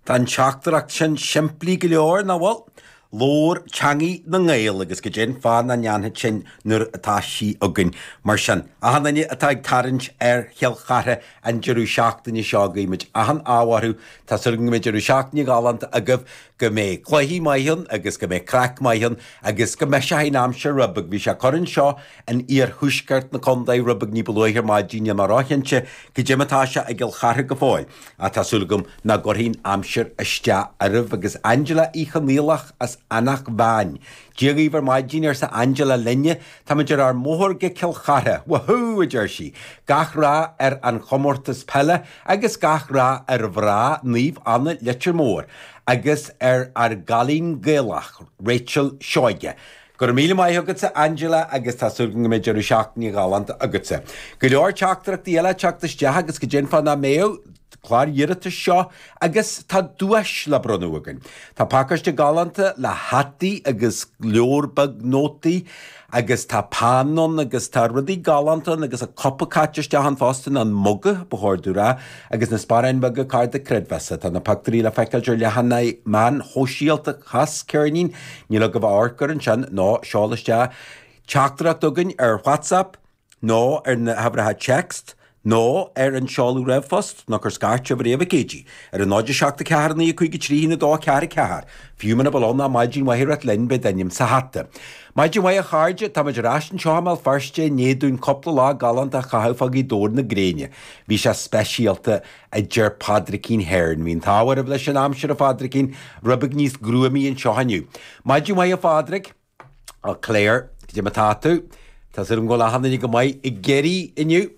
Tá an teachtaireacht sin simplí go leor, nach bhfuil? Labhair teangaidh na nGael agus go dté an fáth nach ndéanfad sinn nuair atá sí againn. Mar sin, achan duine atá ag tarraingt ar Chill Chartha an deireadh seachtaine seo, guímid achan ádh orthu. Tá súil agam go mbeidh deireadh seachtaine galánta agaibh, go mbeidh cluichí maith ann agus go mbeidh craic maith ann agus go mbeidh sé ina aimsir. Rud beag bhí sé ag cur anseo in iarthuaisceart na condae rud beag ní ba luaithe ar maidin ina ráthannaí go dté mar tá sé i gCill Charthaigh go fóill, ach tá súil agam nach gcuirfidh an aimsir isteach oraibh. Agus Angela Uí Chonaolach as Eanach Mheáin. Dia dhaoibh ar maidín, arsa Angela linne. Táimid ar ár mbóthar go Cill Chartha. Wahoo! a deir sí. Gach rath ar an chomórtas peile agus gach rath ar mhná Naomh Anna Leitir Móir agus ar ár gcailín Gaelach, Rachel Seoige. Go raibh míle maith agatsa, Angela, agus tá súil agam go mbeidh deireadh seachtaine ghalánta agatsa. Go leor teachtaireachtaí eile ag teacht isteach agus go dté an fáth nach mbeadh? Clár iarratais seo agus tá duais le bronnadh againn. Tá pacáiste galánta le hataí agus leabhar beag nótaí agus tá peann ann agus tá rudaí galánta ann agus an cupa caite isteach ann fosta, nó an muga, ba chóir domh a rá. Agus na sparáin bheaga cárta creidmheasa, tá na pioctúirí le feiceáilt ar leathanaigh mheáin shóisialta Chas Ceirnín, níl agaibh ach amharc air ansin, nó seol isteach teachtaireacht chugainn ar WhatsApp, nó ar na huimhreacha téacs, nó ar an seoladh ríomhphoist, nó cuir scairt roimh ré ar Katie, ar an 0 7 4 9 5 3 1 2 4 4. Fiú muna bhfuil ann ach maidin mhaith a rá linn, beidh d'ainm sa hata. Maidin mhaith a chairde, táimid ar ais anseo i mBéal Feirste i ndiaidh dúinn cúpla lá galánta a chaitheamh fá Ghaoth Dobhair na gréine. Bhí sé speisialta, a deir Pádraicín Hearn. Bhí an t-ádh oraibh leis an aimsir, a Phádraicín. Rud beag níos gruamaí anseo inniu. Maidin mhaith, a Phádraic. Á, Clare, go dté mar atá tú? Tá súil agam go bhfuil achan duine go maith i gCiarraí inniu.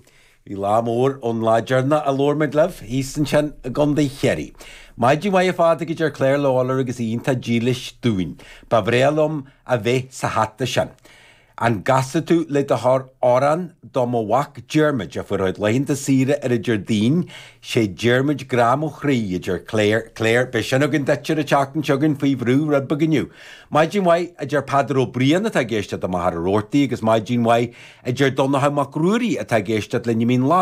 Bhí lá mór ann lá deireanach a labhair muid libh, thíos ansin i gCondae Chiarraí. Maidin mhaith, a Phádraic, a deir Clare Lawlor agus í iontach dílis dúinn. Ba bhrea liom a bheith sa hata sin. An gcasfaidh tú le do thoil amhrán do mo mhac Diarmuid a fuair a chuid laethanta saoire ar an Déardaoin, sé Diarmuid grá mo chroí, a deir Clare. Clare, Beidh sin againn duit ar an tseachtain seo chugainn faoi bhrú rud beag inniu. Maidin mhaith, a deir Peadar Ó Briain atá ag éisteacht i Machaire Rabhartaigh agus maidin mhaith, a deir Donnchadha Mac Ruairí atá ag éisteacht linn i Mín Lárach.